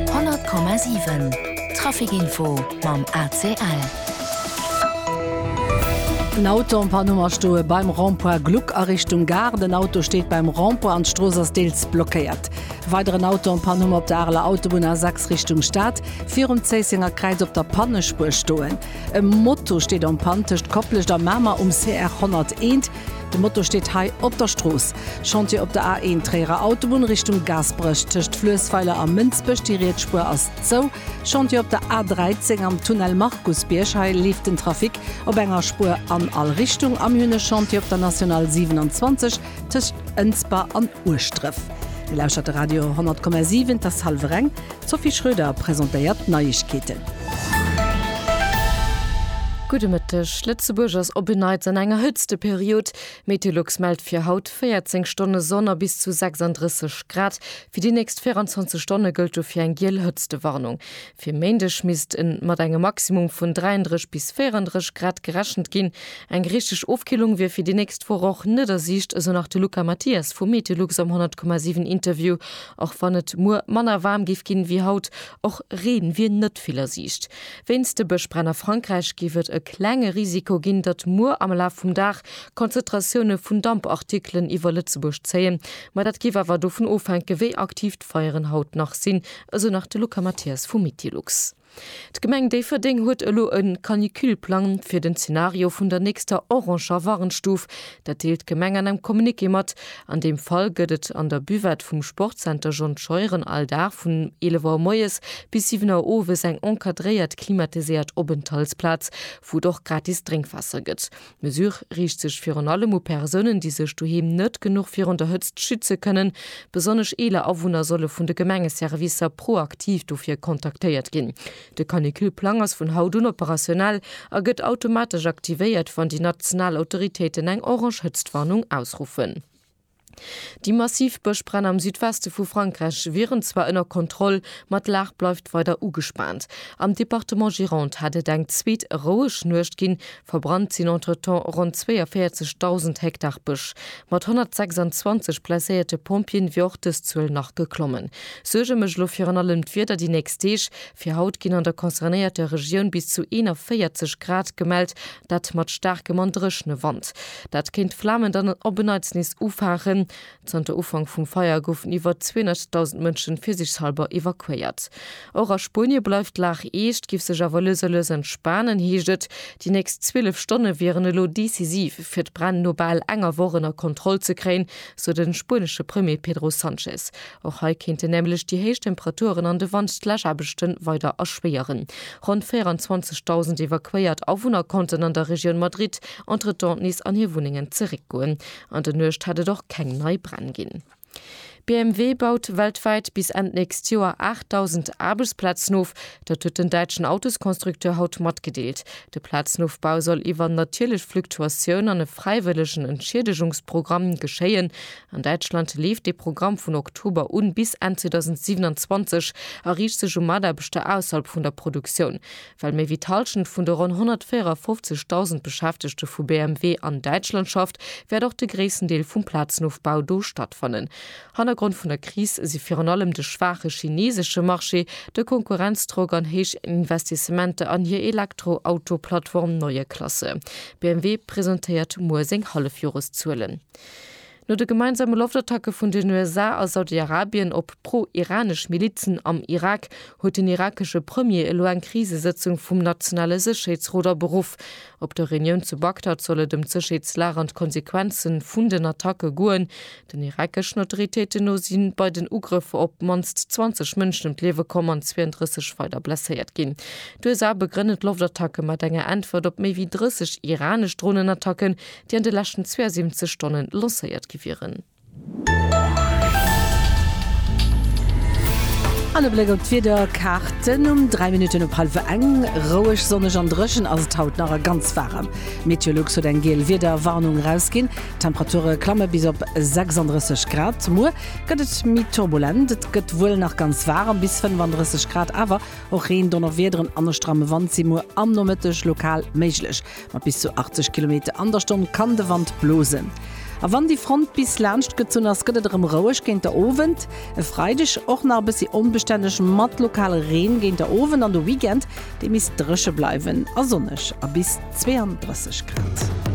100,7 Trafic-Info mam ACL. En Auto am Panneau a stoe beim Rond-point Gluck a Richtung Gare. Den Auto steet beim Rond-point an d'Strooss ass deels blockéiert. E weideren Auto am Panneau op der Areler Autobunn A6 Richtung Stad, virum Zéissenger Kräiz op der Pannespuer stoen. E Moto steet en Panne tëscht Koplescht a Mamer um CR 101. De Moto steet hei op der Strooss. Chantier op der A1, Tréierer Autobunn Richtung Gaasperech, tëscht Fluessweiler a Mënsbech, déi riets Spuer ass zou. Chantier op der A13, am Tunnel Markusbierg, hei leeft den Trafic op enger Spuer an all Richtung. A mir hunn e Chantier op der National 27, tëscht Ënsber an Ueschdref. Dir lauschtert de Radio 100,7, et ass hallef ereng. D'Sophie Schröder presentéiert d'Neiegkeeten. Gudde Mëtteg, Lëtzebuerg ass op en Neits an enger Hëtzteperiod. Meteolux mellt fir haut 14 Stonne Sonn a bis zu 36 Grad. Fir déi nächst 24 Stonne gëllt dofir eng giel Hëtztewarnung. Fir Méindeg misst mat engem Maximum vun 33 bis 34 Grad gerechent ginn. Eng richteg Ofkillung wier fir déi nächst Woch och net a Siicht, esou nach de Luca Mathias vu Meteolux am 100,7 Interview. Och wann et muer manner waarm géif ginn ewéi haut, och Reen wier net vill a Siicht. Wéinst de Bëschbränn a Frankräich géif et e klenge Risiko ginn, datt muer am Laf vum Dag Konzentratioune vun Dampartikelen iwwer Lëtzebuerg zéien, ma dat géif awer dovun ofhänken, wéi aktiv d'Feieren haut nach sinn, esou nach de Luca Mathias vu Mitilux. D'Gemeng Déifferdeng huet elo e Canicule-Plang fir den Zenario vun der nächster oranger Warnstuf. Dat deelt d'Gemeng an engem Communiqué mat. An deem Fall gëtt et an der Buvette vum Sportzenter John Scheuren all Dag vun 11 Auer moies bis 7 Auer owes eng encadréiert, klimatiséiert Openthaltsplaz, wou et och gratis Drénkwaasser gëtt. D'Mesure riicht sech virun allem u Persounen, déi sech doheem net genuch virun der Hëtzt schütze kënnen. Besonnesch eeler Awunner solle vun de Gemengeservicer proaktiv dofir kontaktéiert ginn. De Canicule-Plang ass vun haut un operationell a gëtt automatesch aktivéiert, wann déi national Autoritéiten eng orange Hëtztwarnung ausruffen. Déi massiv Bëschbränn am Südweste vu Frankräich wieren zwar ënner Kontroll, ma d'Lag bleift weider ugespaant. Am Departement Gironde hat et eng zweet roueg Nuecht ginn, verbrannt sinn entretemps ronn 42.000 Hektar Bësch. Mat 126 blesséierte Pompjeeën wier och dës Zuel nach geklommen. Suerge mécht elo virun allem d'Wieder déi nächst Deeg. Fir haut ginn an der concernéierter Regioun bis zu 41 Grad gemellt, dat mat staarkem an dréchne Wand. Dat kéint d'Flamen dann op en Neits nees ufaangen. Zanter Ufank vum Feier goufen iwwer 200.000 Mënschen fir sech selwer evakuéiert. Och a Spuenie bleift d'Lag eescht, géif sech awer lues a lues entspanen, heescht et. Déi nächst 12 Stonne wieren elo decisiv, fir d'Bränn no bal enger Woch ënner Kontroll ze kréien, sou de spuenesche Premier Pedro Sanchez. Och hei kéinten nämlech déi héich Temperaturen an de Wand d'Läschaarbechte weider erschwéieren. Ronn 24.000 evakuéiert Awunner konnten an der Regioun Madrid entretemps nees an hir Wunnengen zeréckgoen. An der Nuecht hat et och keng nei Bränn ginn. BMW baut weltwäit bis Enn d'nächst Joer 8.000 Aarbechtsplazen of. Dat huet den däitschen Autosconstructeur haut matgedeelt. De Plazenofbau soll iwwer natierlech Fluktuatioun an e fräiwëllegen Entschiedegungsprogramm geschéien. An Däitschland leeft dee Programm vun Oktober un bis Enn 2027 a riicht sech u Mataarbechter ausserhalb vun der Produktioun. Well méi wéi d'Hallschent vun de ronn 154.000 Beschäftegte vu BMW an Däitschland schafft, wäert och de gréissten Deel vum Plazenofbau do stattfannen. Hannergrond vun der Kris si virun allem de schwaache chineesesche Marché, de Konkurrenzdrock an héich Investissementer an hir Elektroauto-Plattform Neue Klasse. BMW presentéiert muer seng Hallefjoreszuelen. No de gemeinsame Loftattacke vun den USA a Saudi-Arabien op pro-iranesch Milizen am Irak huet den irakesche Premier elo eng Krisesëtzung vum nationale Sécherheetsrot aberuff. Op der Reunioun zu Bagdad soll et ëm d'Sécherheetslag an d'Konsequenze vun den Attacke goen. Den irakeschen Autoritéiten no si bei den Ugrëffer op d'mannst 20 Mënschen ëm d'Liewe komm an 32 weider blesséiert ginn. D'USA begrënnen d'Loftattacke mat enger Äntwert op méi wéi 30 iranesch Dronenattacken, déi an de leschten 72 Stonne lancéiert gi wieren. An e Bléck op d'Wiederkaarten um 3 Minutten op hallef eng. Roueg, sonneg an dréchen ass et haut nach a ganz waarem. Meteolux huet eng giel Wiederwarnung erausginn. D'Temperature klamme bis op 36 Grad. Muer gëtt et méi turbulent, et gëtt wuel nach ganz waarem, bis 35 Grad, awer och Reen, Donnerwiederen an e stramme Wand si muer am Nomëtteg lokal méiglech. Mat bis zu 80 Kilometer an der Stonn kann de Wand blosen. A wann déi Front bis laanscht gezunn ass, gëtt et erëm roueg géint der Owend. E Freideg och nach e bëssi onbestänneg mat lokale Reen géint der Owend an de Weekend, dee misst dréche bleiwen a sonneg a bis 32 Grad.